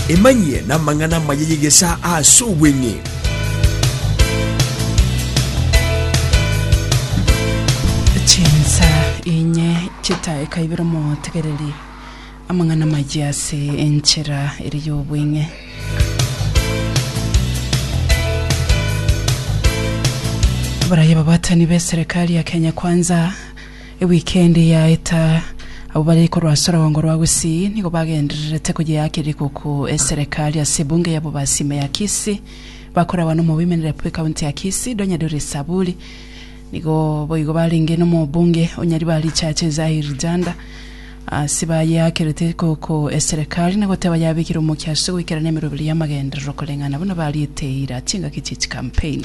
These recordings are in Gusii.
Emanyie namang'ana amaya y'egesaa aase obweng'e. chinsa inye chitaekaibera omotegereri amang'ana maye ase enchera ere y'obweng'e abaraya babatani b'eserekari ya kenya kwanza Ewikendi yaeta, abwo bare korwa ase orogongo rwa Gusii nigo bagendererete koyeaka rikuku eserekari ase ebunge yabo basime ya Kisii. Bakoragwa n'omoboimeneria bw'ekaunti ya Kisii, Donya Doris Saburi, nigo boigo barenge n'omobunge o Nyaribari Richache Zahir Janda ase bayeakerete rikuku eserekari na goteba yabekire omokia ase goikerana emeroberi y'amagenderero koreng'ana buna bariete eira chingaki chie chikampeini.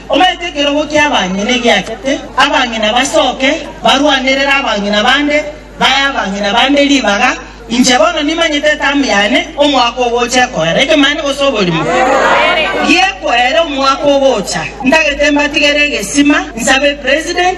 Omanyete ekerogo ki'abang'ina egiachete, abang'ina basoke, barwanerere abang'ina bande, bae abang'ina bande ribaga. Inche bono nimanyete etamu yane, omwaka ogocha ekoera ekemanye gose oborimo gi'ekoera omwaka ogocha. Ntagete mbatigere egesima, nsabe President,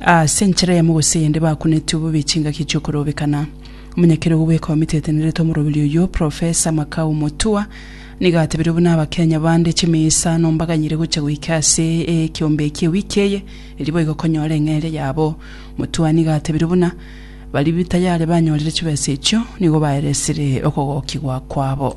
Ase enchera eyemo gose eyende bakuneti obobe chingaki chiokorobekana. Omonyakeria ogobweka ometetenerete omoroberi oyio, Professor Makau Mutua, nigo atebire buna Abakenya bande chimeyesano mbaganyire gocha goika ase ekiombe ekia ewiki eye erio boigo konyora eng'eria yabo. Mutua nigo atebire buna baria tayari banyorire chibesa echio nigo baeresire okogokigwa kwabo.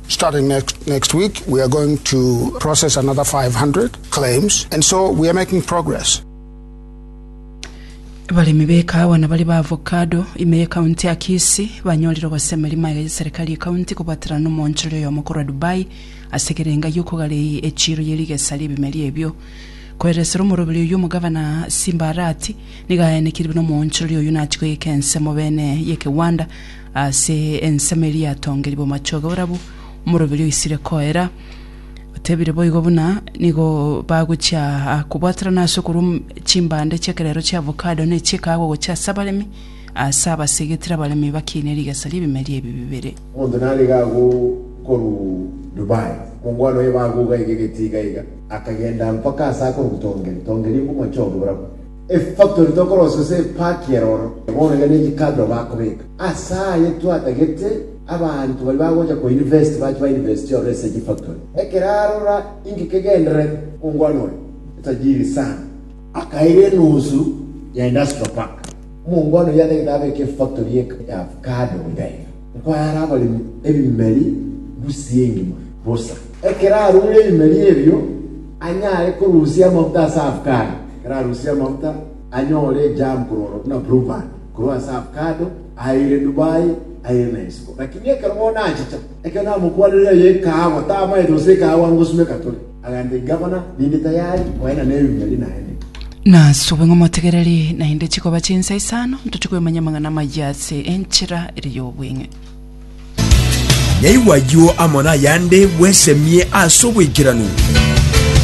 Starting next next week we are going to process another 500 claims and so we are making progress. Abaremi ba ekahawa na bari ba avocado ime ye county ya Kisii banyorire ogosemeria magega ye serikali ye county kobwaterana n'omoonchoreri oyomo korwa Dubai ase ekerenga gi'okogara echiiro ye rigesa ri'ebimeri ebio. Koeresera omoroberi oyio omogavana Simba Arati nigo aenekirirwe n'omoonchoreri oyio nachi koyeka ensemo bene y'ekegwanda Ase ensemo eria yatongerie bomachoge orabu omoroberi oisire koera, otebire boigo buna nigo bagochia kobwaterana ase okorwa chimbande chi'ekerero chia avocado ne chi'ekaagwa gochia ase abaremi, ase abasegetire abaremi bakiine rigesa ri'ebimeri ebi bibere. Omonto narige agwo korwa Dubai, mongwana oye bagwo gaiga egete iga iga, akagenda mpaka ase akorwa Tongeri, Tongeri bomachoge borabu. Efactori tokorosia ase epaki ero oro, bono iga ne chikabira bakobeka. Ase aye twatagete abanto baria bagocha ko university bache ba university ororo ase chifactori. Ekero arora inki kegendererete, omongwana oria, etajiri sana, akaira enusu ya industrial park. Omongwana oyio atagete abeke efactori ya avocado iga iga. Nkoyaare abaremi ebimeri ngusii engima. Bosa, ekero arure ebimeri ebio, anyare korusia amafuta ase avocado. Ekero arusia amafuta, anyore ejam korwa buna blueband korwa ase avocado, aire Dubai, aire na isiko. Lakini ekero bono achicha, ekero namokwanire eyo ekaagwa, tamanyete gose ekaagwa angosumeka tore. Agambia egavana, Ninde tayari koena neruya ri naende. Nasube ng'omotegereri, naende chikoba chinsa isano ntoche kwemanya amang'ana amaya ase enchera ere y'obweng'e. Naigwa ayio amo nayande bwesemie ase oboikeranu.